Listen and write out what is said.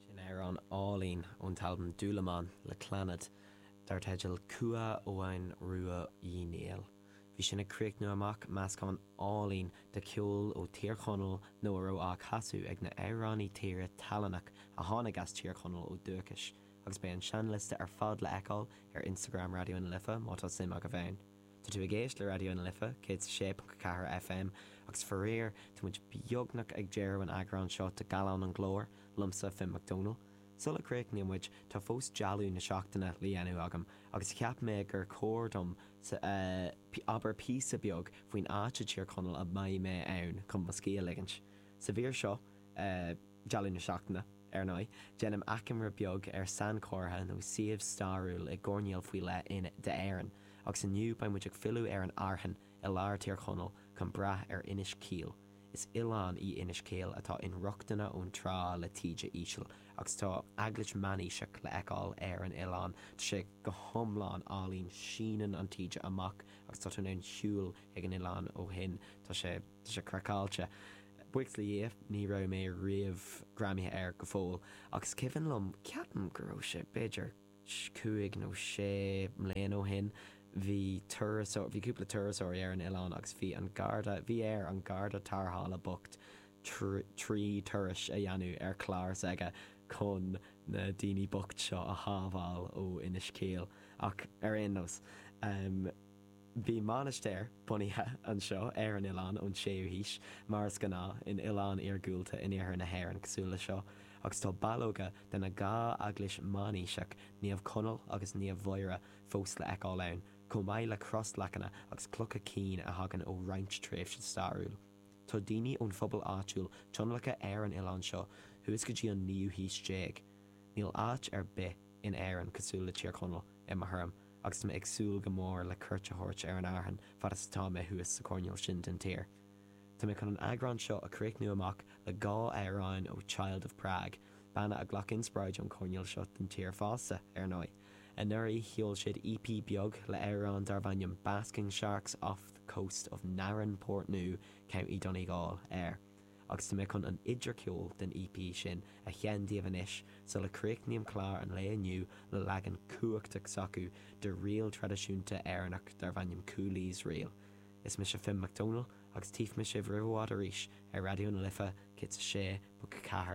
Sin amhrán álainn ón t-albam Dúlamán le Clannad dar teideal Cumha Eoghain Rua Uí Néill. Bhí sin ag críochnú amach meascán álainn de cheol ó Thír Chonaill nó a raibh á chasadh ag na h-amhránaí tíre tallannach a tháinig as Tír Chonaill ó dúchais agus beidh an seinnliosta ar fad le fheiceáil ar Instagram Raidió na Life má tá suim agaibh ann. Tá tú ag éisteacht le Raidió na Life 106.4 FM agus faraor tá muid beagnach ag deireadh an eagrán seo de Gallán an Ghlóir liomsa, Finn Mac Domhnaill. Sula gcríochnaíonn muid tá fós dealbh na seachtaine le dhéanamh agam agus cheap mé gur chóir dom abair píosa beag faoin áit i dTír Chonaill a mbeidh mé ann chun mo scíth a ligint. Sa mhír seo, Dealbh na Seachtaine, Ar ndóigh, déanaim achoimre beag ar sainchomhartha nó suíomh stairiúil i gcoirnéal faoi leith in, de, Éirinn, agus inniu beidh muid ag filleadh ar an Fhearthainn i lár Thír Chonaill chun breathnú ar Inis Caoil. Is oileán í Inis Caoil atá inrochtana ón trá le taoide íseal agus tá eaglais meánaoiseach le fheiceáil ar an oileán. Tá sé go hiomlán álainn, síneann an taoide amach agus tá tú in ann siúl chuig an oileán ó shin. Tá sé. Tá sé craiceáilte. Buíochas le Dhia, ní raibh mé riamh greamaithe air go fóill, ach is cuimhin liom, ceapaim go raibh sé b'fhéidir cúig nó sé mbliana ó shin, bhí turasóir, bhí cúpla turasóirí ar an oileán agus bhí an garda, bhí ar an garda tarrthála bocht trí turais a dhéanamh ar chlár s'aige chun na daoine bocht seo a shábháil ó Inis Caoil. Ach ar aon nós. Bhí mainistir bunaithe anseo ar an oileán ón 6ú haois, mar is gnáth in oileáin iargúlta in iarthar na hÉireann cosúil le seo, agus tá ballóga de na dhá eaglais meánaoiseach, Naomh Conall agus Naomh Mháire, fós le fheiceáil ann, chomh maith le crosleacanna agus clocha cinn a thagann ó roinnt tréimhse stairiúil. Tá daoine ón phobal áitiúil tionlactha ar an oileán seo thuas go dtí an naoú haois déag. Níl áit ar bith in Éirinn cosúil le Tír Chonaill, i mo thuairim, agus tá mé ag súil go mór le cuairt a thabhairt ar an Fhearthainn fad is atá mé thuas sa choirneál sin den tír. Tá mé chun an eagrán seo a chríochnú amach le dhá amhráin ó Child of Prague, banna a ghlac inspioráid ón choirneál seo den tír fosta, ar ndóigh. Anuraidh, sheol siad EP beag le hamhrán darbh ainm 'Basking Sharks Off the Coast of Narin, Portnoo, County Donegal' air. agus tá mé chun an idircheoil den EP sin a sheinn daoibh anois sula críochnaím clár an lae inniu le leagan cumhachtach s'acu de ríl traidisiúnta Éireannach darb ainm Cooley's Reel. Is mise Finn Mac Domhnaill agus tífidh mé sibh roimh i bhfad arís ar Raidió na Life 106.4.